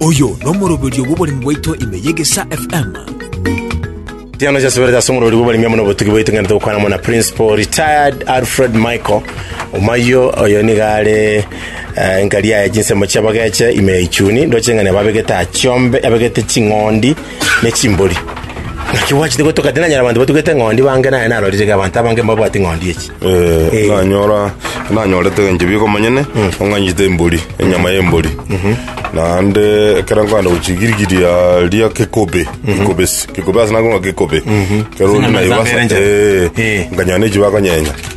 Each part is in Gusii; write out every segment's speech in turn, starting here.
Oyo nomoroberio bw'oboremi bwaito ime y'Egesaa FM. Tiano chasubirete ase omorori bw'oboremi amo nobotuki bwaito ng'ende togokwana amo na principal retired alfred michael omayo oyo niga are eh, nkari yaye chinsemo chiabageche ime ya ichuni ndoche ng'a nababegete achiombe abegete ching'ondi ne chimbori. Naki gwachete gotoka tinanyora abanto batugete ng'ondi bange naye narorire iga abanto abange mbabwati ng'ondi echi. Eh, nanyora nanyorete enche bigo manyene ong'anyite embori enyama y'embori naende ekero nkogenda gochigirigiria ria kekobe kekobe s- kekobe ase nakonga kekobe ekero Chinyama naibasa- za mbere enche. eh, Eh. nkanyora nechi bakonyenya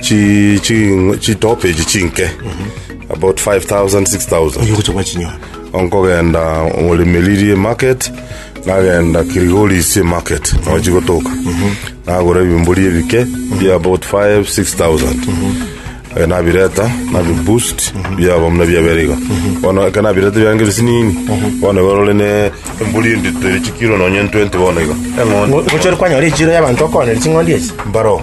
Chi chi chitope echi chinke about 5000 6000 oyo gocha kwa chinyora onkogenda orimiririe market nagenda kirigoris market nochi gotoka nagora ebimbori ebike bia about 5 6000 Eh, nabireta nabiboost biaba muna biaberiga bono ekero nabireta biange bisinini bono barore ne embori endito eri chikiro nonye 20 bono iga eng'ondi Ngo- gocha ore kwanyora echiro y'abanto okoonera ching'ondi echi mbaro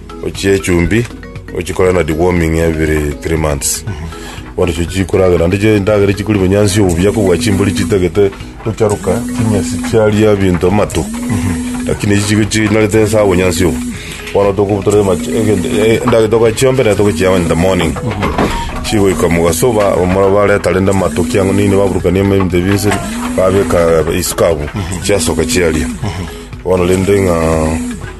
ochie echumbi ochikore na deworming every three months bono chio chikoragera naende chio endagera chikori bonyansi obubuya kobua chimbori chitagete gocharuka chinyasi chiaria ebinto amato lakini echi chigo chinarete nsa obonyansi obo bono toko- tore ama- egento- e- endagera togachiombera naende togochiama in the morning chigoika mogasoba abamura bareta rende amato ki ang'u nini baburukania ama ebinto binse babeka isuka abwo chiasoka chiaria bono rende ng'a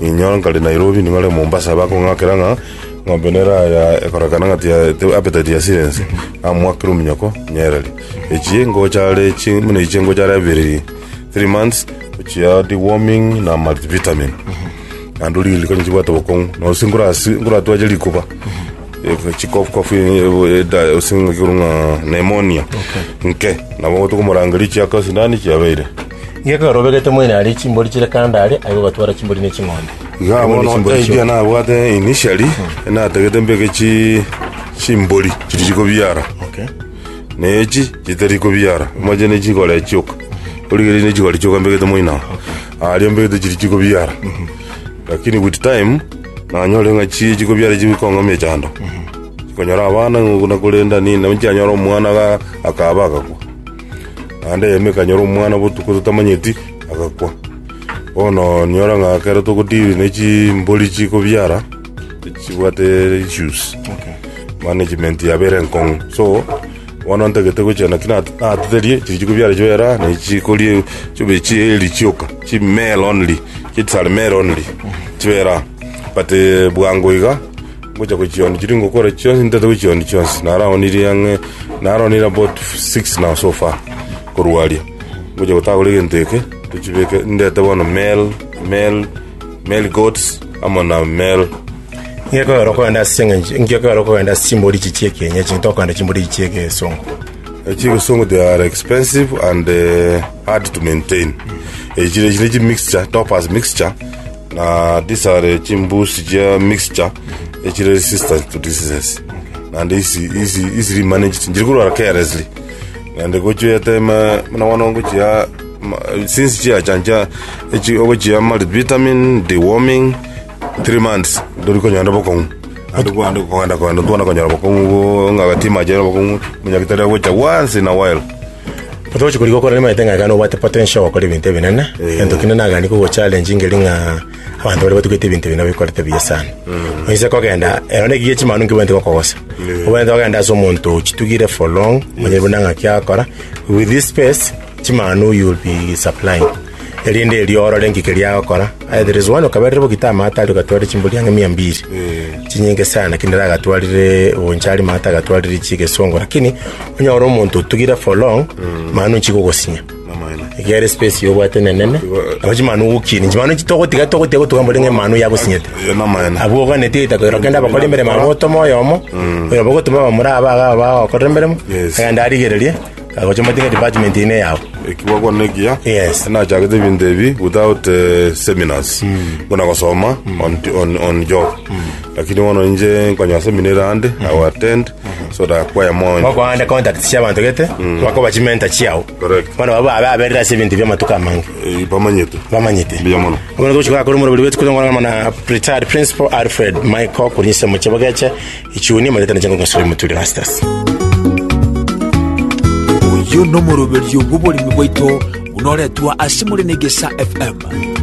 Ninyora nkare Nairobi ning'ore Mombasa bakong'akera ng'a ng'ombe nere aya ekorekana ng'a tiya te- appetite yasire ense namwakera ominyoko nyereri echie ngocha are chi buna echi ngocha are abere three months ochia deworming na multivitamin naende orie riko nichibwate obokong'u na gose nkorasi nkoratwache rikuba Eko chikofu kofu ase ng'a pneumonia nke nabo tokomorangeria chiaka sindani chiabeire. Inge ekero obegete moino aria chimbori chire kando are, aye ogatwara chimbori ne ching'ondi. Iga Aye bono bono chimbori ekiya chi'omonto. nabwate initially natagete mbeke chi chimbori chiri chikobiara Okay. na echi chitari kobiara moche ne chikore chioka origeri ne chikore chioka mbegete moino ago aria mbegete chiri chikobiara lakini with time nanyore ng'a chi chikobiara echi bikong'amia chando chikonyora abana ng'o- nakorenda nini nabu chianyora omwana ga- akaba agakwa Naende eyemo ekanyora omwana botuko totamanyeti, agakwa. Bono nyora ng'a ekero togodiri ne chimbori chikobiara, chibwate issues, management yabo ere enkong'u. So, bono ntagete gochia naki na- natiderie, chiri chikobiara chibere aa, ne chikori chibe chieri chioka, chi male only, chit are male only, chibere aa. But eh, bwango iga. Ngocha gochionda chiria ngokora chionsi ntaete gochionda chionsi naraonirie ang'e naroonire about six now so far korwa aria ngocha gotagora egento eke tochibeke ndete bono male male male goats amo na male Ngekogera okogenda ase eng'encho ngekogera okogenda ase chimbori echi chia ekienyeji ng'ete okogenda chimbori echi chia egesongo. Echia egesongo they are expensive and eh, hard to maintain. Echi chire chire chimixture, topaz mixture, Na these are chimbusi chia mixture echire resistant to diseases naende isi isi isi remanaged njiri korwara carelessly naende gochiete ma muna bono ngochia ma- since chiachancha echi ogochia multivitamin deworming three months ndori konyora bokong'u naende kwande kogenda kogenda twana konyora bokong'u bo ng'a gati mache obokong'u omonyagetari agocha once in a while Otogochia korigia okore nimaete ng'a ekero nobwate potential gokora ebinto ebinene egento kinde nagani kogo challenge ngeri ng'a abanto baria batugete ebinto ebi nabo ekorete buya sana oise kogenda ero na ekiya chimanu nkebwenerete gokogosa obwenerete kogenda ase omonto ochitugire for long monyene buna ng'aki akora with this space chimanu you will be supplying. erinde erio orore inki keria agokora aye there is one okaberire bo gita amaate aria ogatwarire chimbori ang'e mia mbiri chinyinge sana lakini nere agatwarire bonchari maate agatwarire chigesongo lakini onyore omonto otugire for long manu nchi gogosinya Amang'ana. egere space yobwate nenene nabo chimanu gokini chimanu nchi togotiga togotiga gotuga mbori ng'e manu yagosinyete Eh, Amang'ana. abwo oganetie itako ero kende abakora emeremo abo otoma oyomo oyo bogotuma bamura aba aba bagokorera emeremo Yes. agende arigererie Agocha motinga department ine yao. ekigwagwa nekiya Yes. nachagete ebinto ebi without eh, seminars buna gosoma on, on, on job lakini bono inche nkonya semina ere ande i will attend so that kwaya moyo Bakoande contact cia bantu gete. Bakoba chimenta chiao. Correct. Bana baba abe aberera ase ebinto bia matuka amange. Eh, bamanyete Bamanyete. Mbuya mono. Ogono gochika kore murobiri wetu kore ngwana mana retired principal Alfred Michael kunyise muchebogeche Ichuni omanyete nache ngogasura emoturi Rastus. Oyo nomoroberio bw'oboremi bwaito buna oretwa ase more na Egesa FM.